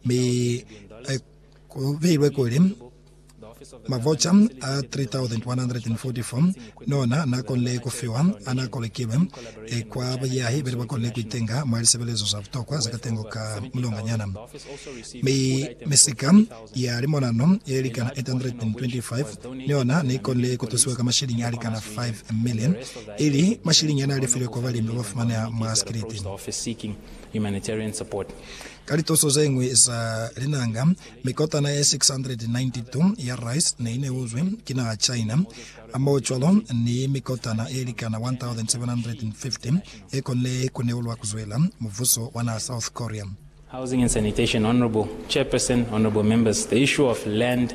mi ku beilwe kuli, Mavoca a 3,144 nona na konile ku fiwa ana kolekilwe kwa bayahi bene ba konile ku itenga mwa lisebelezo za butokwa za katengo ka mulonganyana, mi misika ya limonano ye likana 825 niyona ne konile ku tusiwa ka mashilingi a likana 5 million, ili mashilingi ane a lifilwe kwa balimi ba ba fumaneha mwa sikiliti. Ka lituso ze ñwi za linanga, mikotana ye 692 ya rice ne i neuzwi ki naha China, hamohocwalo ni mikotana ye likana 1,750 ye konile ku neulwa ku zwela mubuso wa naha South Korea. Housing and Sanitation Honourable Chairperson, Honourable Members, the issue of land,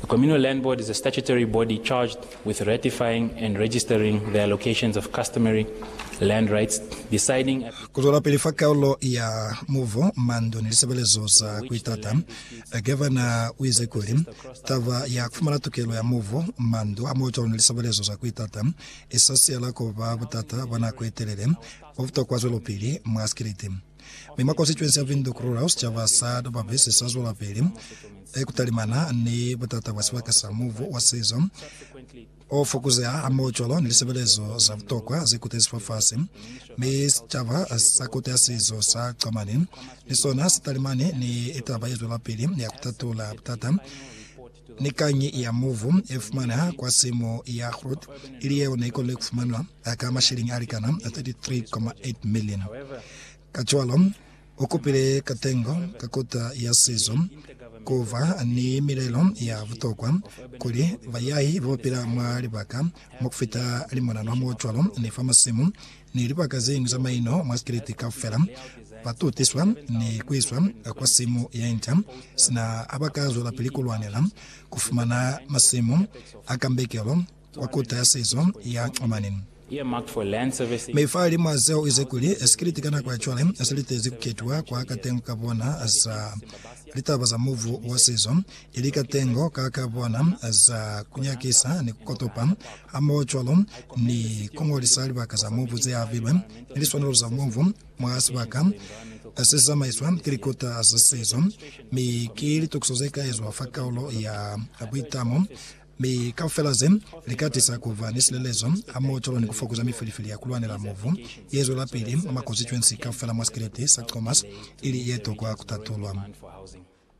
The communal land board is a statutory body charged with ratifying and registering the allocations of customary land rights, deciding Ku zwelapili fa kaulo ya mubu, mandu ni lisebelezo za ku itata, Gavana u ize kuli, Taba ya ku fumana tukelo ya mubu, mandu hamohocwalo ni lisebelezo za ku itata i sa siyala ku ba butata bwa nako ye telele bo butokwa zwelopili mwa sikiliti. Mi mwa konstituensi ya Windhoek Rural, sicaba sa Dobabesi sa zwelapili ku talimana ni butata bwa sibaka sa mubu wa sizo o fokuzeha hamoho cwalo ni lisebelezo za butokwa ze kotezi fafasi. Mi sicaba sa Kote ya Sizo sa Germany ni sona si talimani ni taba ye zwelapili ya ku tatula butata Ni kañi ya muvu ye fumaneha kwa simu ya Groot, ili yeo ne ikonile ku fumanwa ka masheleñi a likana 33.8 milioni. Kacwalo, u kupile katengo ka kota ya sizo ku ba ni milelo ya butokwa kuli bayahi ba ba pila mwa libaka mwa ku fita limonanwa mo cwalo ni fa masimu ni libaka zeñwi za maino mwa Sikriti kaufela, ba tutiswa ni ku iswa kwa simu ye nca, sina ha ba ka zwelapili ku lwanela ku fumana masimu a kambekelo kwa Kota ya Sizo ya Oman. Mifahalimwaa seo, u ize kuli, Sikriti ka nako ya cwale se litezi ku ketiwa kwa katengo ka bona sa litaba za mubu wa sizo, Ili katengo ka ka bona za kunyakisa ni kukotopa, hamohocwalo ni kungolisa libaka za mubu zeabilwe ni liswanelo za mubu mwa sibaka sesizamaiswa ki likota za sizo, mi ki litokiso zekaezwa fa kaulo ya buitamo, mi kaufela ze lika tisa kuba ni silelezo hamohocwalo ni kufokuza mifilifili ya kulwanela mubu yezwelapili mwa makozi 20 kaufela mwa Sikeleti sa Comas ili yetokwa kutatulwa.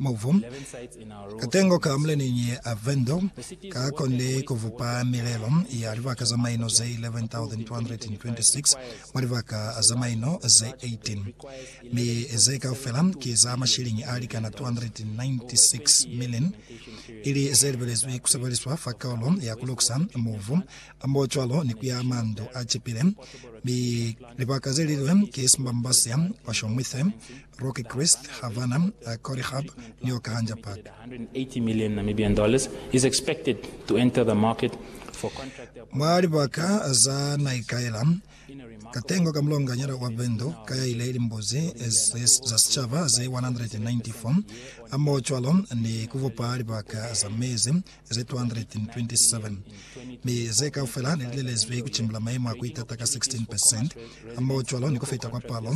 Mubu, katengo ka muleneñi a Vendor ka konile ku bupa milelo ya libaka za maino ze 11,226 mwa libaka za maino ze 18, mi ze kaufela ki za mashiliñi a likana 296 million, ili ze libelezwi ku sebeliswa fa kaulo ya ku lukusa mubu mo cwalo ni ku ya mandu a cipile, mi libaka ze lilwe ki Simbambasea, Oshomwithe, Rocky Christ, Havana, a Corey Hub, New York hanja patu. Mwa libaka za naikaela, katengo ka mulonganyana wa Vendo ka ya ile limbuzi za sicaba ze 194, hamohocwalo ni kubupa libaka za mezi ze 227, mi ze kaufela nelilelezwi kucimbula maimo a kuitata ka 16%, hamohocwalo ni kufita kwa palo